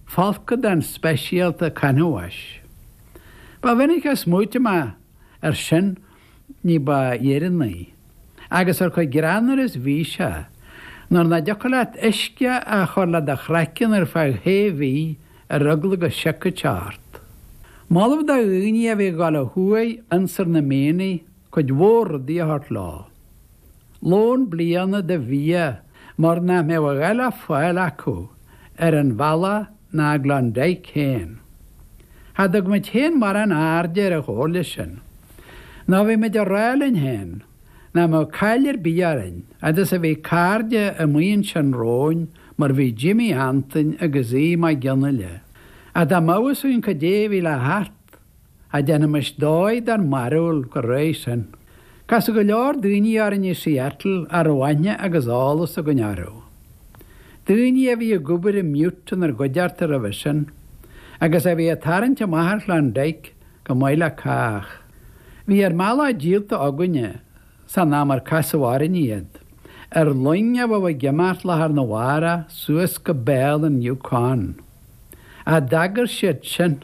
Folcadán speisialta canbháis. Ba mhinic a smaoitigh mé air sin ní ba dheireanaí, agus ar chomh greannmhar is bhí sé, nuair nach dtiocfadh leat uisce a chur le do chraiceann ar feadh shé mhí ar eagla go siocfadh sé ort. Moladh do dhaoine a bhí ag dul ó thuaidh ionsar na mianaigh cuid mhór rudaí a thabhairt leo. Lón bliana de bhia mar nach mbeadh a dhath le fáil acu ar an bhealach ná i gKlondike féin. Cha dtug muid féin mórán airde ar an chomhairle sin. Nó bhí muid a rá linn féin nach mbeadh caill ar bith orainn fhad is a bhí cairde amuigh ansin romhainn mar bhí Jimmy Antoin agus Aodh Mag Fhionnaile. Ach dá mbeadh a fhios againn cad é bhí le theacht. cha déanaimis dóigh dár mbarúil chomh réidh sin. Casadh go leor daoine orainn i Seattle a raibh aithne agus eolas againn orthu. Daoine a bhí ag obair i mButte inár gcuideachta roimhe sin agus a bhí ag tarraingt amach ar Klondike chomh maith le cách. Bhí ár mbealach díolta againne san am ar casadh orainn iad, ar loing a bheadh ag imeacht lá arna mhárach suas go béal an Yukon. Ach d'agair siad sinn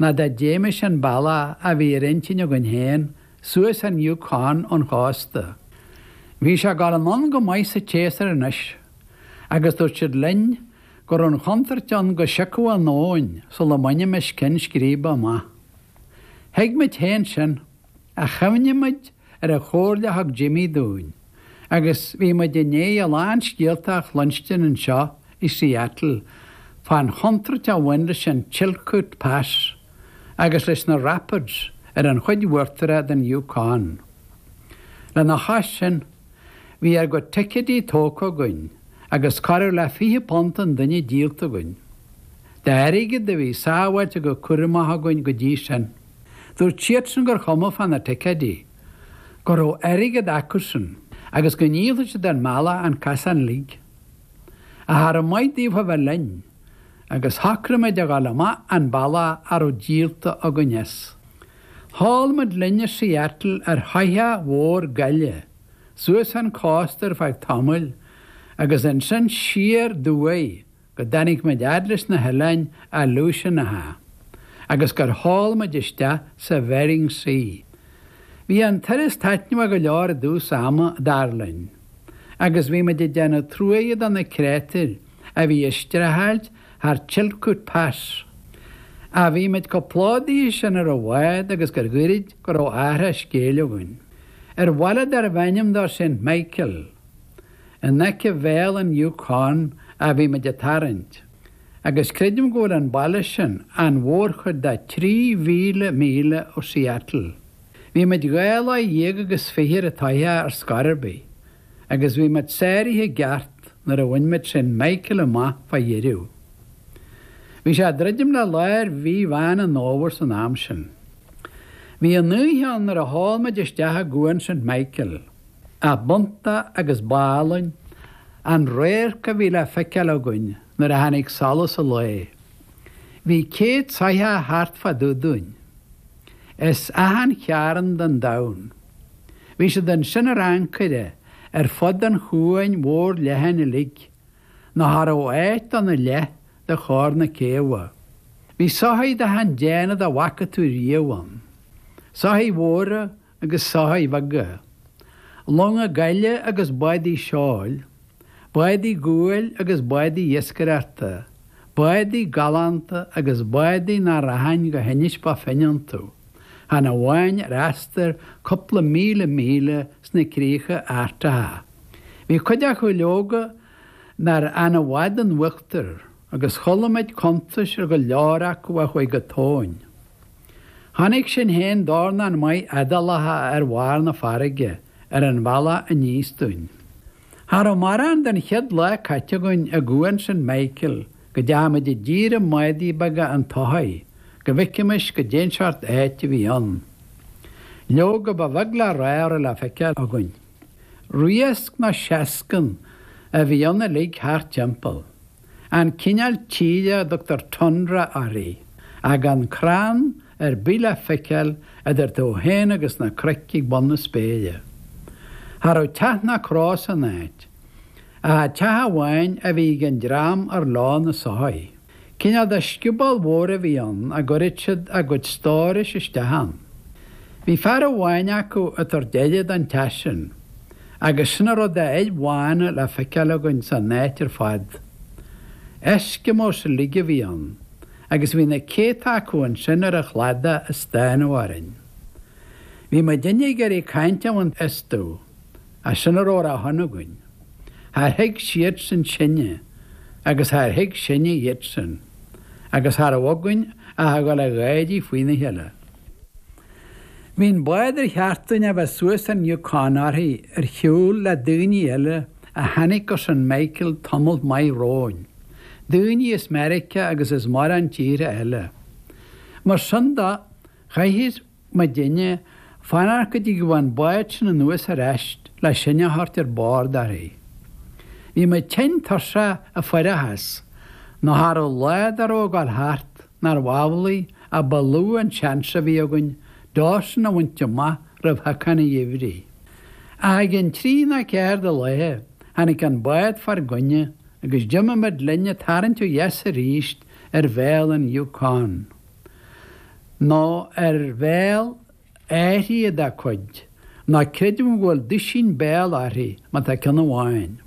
ná dá dtéimis an bealach a bhí ar intinn againn féin, suas an Yukon ón chósta. Bhí sé ag dul anonn go maith sa tséasúr anois, agus dúirt siad linn go raibh an chontúirt ann go siocfadh an abhainn sula mbainimis ceann scríbe amach. Thuig muid féin sin. Ach chuimhnigh muid ar an chomhairle a thug Jimmy dúinn agus bhí muid i ndéidh a lán scéalta a chluinstin anseo i Seattle fán chontúirt a bhain leis an Chilkoot Pass agus leis na Rapids ar an chuid uachtarach den Yukon. Lena chois sin, bhí ár gcuid ticéidí tógtha againn agus corradh le fiche punt an duine díolta againn d'airgead a bhí sábháilte go cúramach againn go dtí sin. Dúirt siadsan gur chuma fá na ticéidí, go raibh airgead acusan agus go ndíolfadh siad ár mbealach an casán uilig. Ach cha raibh maith daofa a bheith linn agus shocraigh muid a ghabháil amach an bealach a raibh díolta againn as. Sheol muid linn ó Seattle ar shoitheach mhór gaile suas an cósta ar feadh tamaill agus ansin siar ó thuaidh go dtáinig muid fhad leis na hOileáin Aleutianacha agus gur sheol muid isteach sa Bhering Sea. Bhí an turas taitneamhach go leor i dtús ama, dar linn, agus bhí muid ag déanamh truaighe do na créatúir a bhí ag streachailt thar Chilkoot Pass. Ach bhí muid chomh plódaithe sin ar an bhád agus gur ghoirid go raibh athrach scéil againn. Ar bhaile darbh ainm dó Saint Michael, In aice Bhéal an Yukon a bhí muid ag tarraingt, agus creidim go bhfuil an baile sin an mhórchuid de 3,000 míle ó Seattle. Bhí muid dhá lá dhéag agus fiche ar an tsoitheach ar scor ar bith, agus bhí muid sáraithe i gceart nuair a bhain muid Saint Michael amach fá dheireadh. Bhí sé ag druidim le lár mhí Mheán an Fhómhair san am sin. Bhí an oíche ann nuair a sheol muid isteach i gCuan Saint Michael. B'iontach agus b'álainn an radharc a bhí le feiceáil againn nuair a tháinig solas an lae. Bhí céad soitheach thart fá dtaobh dúinn, as achan chearn den domhan. Bhí siad ansin ar ancaire ar fud an chuain mhóir leathain uilig, nó cha raibh áit ann dá leath de chóir na céibhe. Bhí soithigh d'achan déanamh dá bhfaca tú riamh ann, soithigh mhóra, agus soithigh bheaga, longa gaile agus bádaí seoil, bádaí guail agus bádaí iascaireachta, bádaí galánta agus bádaí nach rachainn go hInis Bó Finne iontu, chan amháin ar astar cupla míle míle sna críocha Artacha. Bhí cuid acu, leoga, nár fhan i bhfad in uachtar, agus chuala muid cuntais ar go leor acu a chuaigh go tóin. Chonaic sinn féin dornán maith éadálacha ar bharr na farraige ar an bhealach aníos dúinn. Cha rabh mórán den chéad lá caite againn i gCuan Saint Michael go dteachaidh muid i dtír i mbádaí beaga an tsoithigh go bhfeicfimis goidé an seort áit a bhí ann. Leoga ba bheag le rádh a rabh le feiceáil againn. Riasc nó seascann a bhí ann uilig thart timpeall. an cineál tíre a dtugtar tundra uirthi, gan crann ar bith le feiceáil idir tú féin agus na cnoic ag bun na spéire. Cha rabh teach ná cró san áit, ach an teach amháin a bhí ag an dream ar leo na soithigh. Cineál de scioból mhór a bhí ann a gcuireadh siad a gcuid stórais isteach ann. Bhí fear amháin acu ag tabhairt aire don teach sin. Agus sin a raibh d'fhir bhána le feiceáil againn san áit ar fad. Eskimos uilig a bhí ann, agus bhí na céadta acu ansin ar an chladach ag stánadh orainn. Bhí muid uilig ag iarraidh caint a bhaint astu, ach sin a raibh ar a shon againn. Char thuig siadsan sinne, agus char thuig sinne iadsan, agus cha raibh againn ach a dhul ag gáirí faoina chéile. Bhí an bád ar cheart dúinn a bheith suas an Yukon uirthi ar shiúl le daoine eile a tháinic go St. Michael tamalt maith romhainn, daoine as Meiriceá agus as mórán tíortha eile. Mar sin de, chaithfeadh muidinne fanacht go dtí go bhfilleadh an bád sin anuas ar ais le sinn a thabhairt ar bord uirthi. Bhí muid tinn tuirseach ag fuireachas, ná cha raibh lá dá raibh ag gabháil thart. Nárbh amhlaidh a ba lú an seans a bhí againn Dawson a bhaint amach roimh shiocán an gheimhridh? Ach i gceann trí ná ceathair de laethe tháinig an bád fár gcoinne agus d'imigh muid linn ag tarraingt ó dheas arís ar bhéal an Yukon. Nó ar bhéal. áirithe dá cuid, ná creidim go bhfuil duisín béal uirthi ma tá ceann amháin.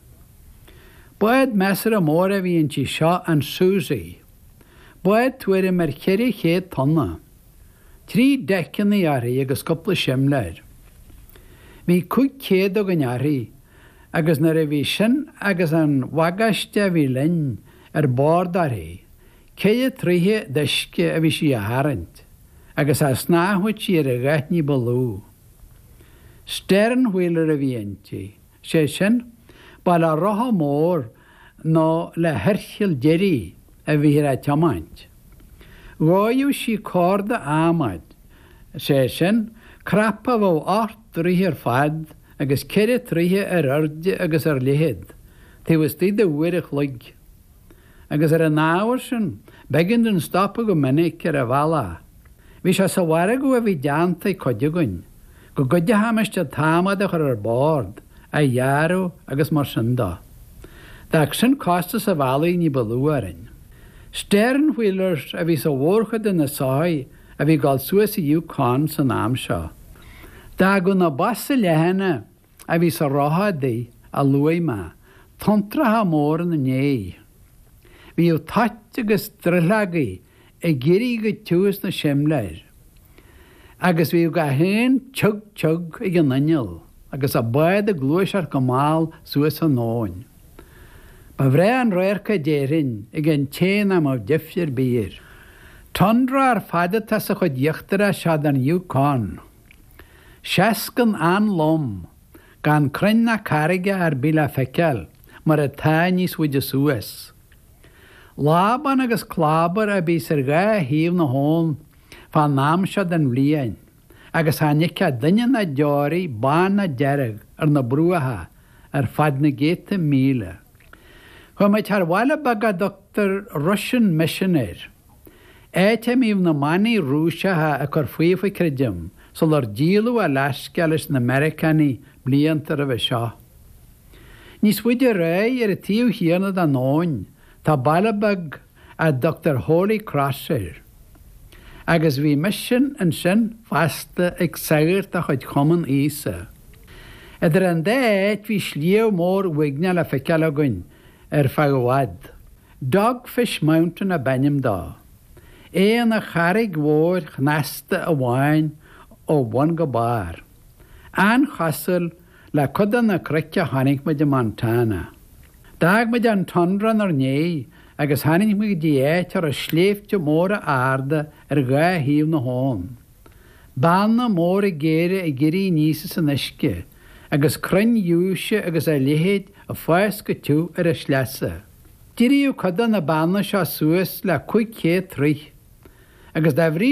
Bád measartha mór a bhí inti seo an Susie. Bád tuairim ar cheithre chéad tonna. Trí deiceannaí uirthi agus cúpla simléir. Bhí cúig chéad againn uirthi agus nuair a bhí sin agus an bhagáiste a bhí linn ar bord uirthi, Ceithre troighthe d'uisce a bhí sí a tharraingt agus cha snámhfadh sí ar a dhath ní ba lú. Stern-wheeler a bhí inti, sé sin, ba le rotha mór nó le hoirchill deiridh a bhíthear á tiomáint. Dhóigheadh sí córda adhmaid, sé sin, cnap a bheadh ocht dtroighthe ar fad agus ceithre troighthe ar airde agus ar leithead, taobh istuigh de uair an chloig. agus ar an ábhar sin, b'éigean dúinn stopadh go minic ar an bhealach. Bhí sé sa mhargadh a bhí déanta ag cuid againn, go gcuideochaimis an t-adhmad a chur ar bord, é a ghearradh agus mar sin de. D'fhág sin costas an bhealaigh ní ba lú orainn. Stern wheelers a bhí sa mhórchuid de na soithigh a bhí ag dul suas an Yukon san am seo. D'fhágadh na bosa leathana. a bhí sa rotha adaí a luaigh mé, tonntracha móra ina ndéidh. Bhíodh toit agus drithleogaí ag éirí go tiubh as na simléir, agus bhíodh gach aon tiug tiug ag an inneall agus an bád ag gluaiseacht go mall suas an abhainn. Ba bhreá an radharc é déarfainn ag an té nach mbeadh deifir ar bith air. Tundra ar fad atá sa chuid íochtarach seo den Yukon. Seascann an-lom, gan crainn ná carraige ar bith le feiceáil mar atá níos faide suas. Lábán agus clábar a bhíos ar dhá thaobh na habhann fán am seo den bhliain agus chan fheicfeá duine ná deoraí bán ná dearg ar na bruacha ar fad na gcéadta míle. Chuaigh muid thar bhaile beag a dtugtar Russian Mission air. Áit a mbíodh na manaigh Rúiseacha ag cur faofa creidim sular díoladh Alaska leis na Meiriceánaigh blianta roimhe seo. Níos faide ar aghaidh ar an taobh chéanna den abhainn tá baile beag a dtugtar Holy Cross air. Agus bhí Misean ansin fosta ag sagart de chuid Chumann Íosa. Idir an dá áit bhí sliabh mór uaigneach le feiceáil againn ar feadh i bhfad. Dogfish Mountain ab ainm do. É ina charraig mhóir shnasta amháin ó bhun go barr. An-chosúil le cuid de na cnoic a chonaic muid i Montana. D'fhág muid an tundra inár ndiaidh agus tháinig muid go dtí áit a raibh sléibhte móra arda ar dhá thaobh na habhann. Beanna móra géara ag éirí aníos as an uisce agus crainn ghiúise agus a leithéid ag fás go tiubh ar a sleasa. D'éiríodh cuid de na beanna seo suas le cúig chéad troigh, agus dá bhrí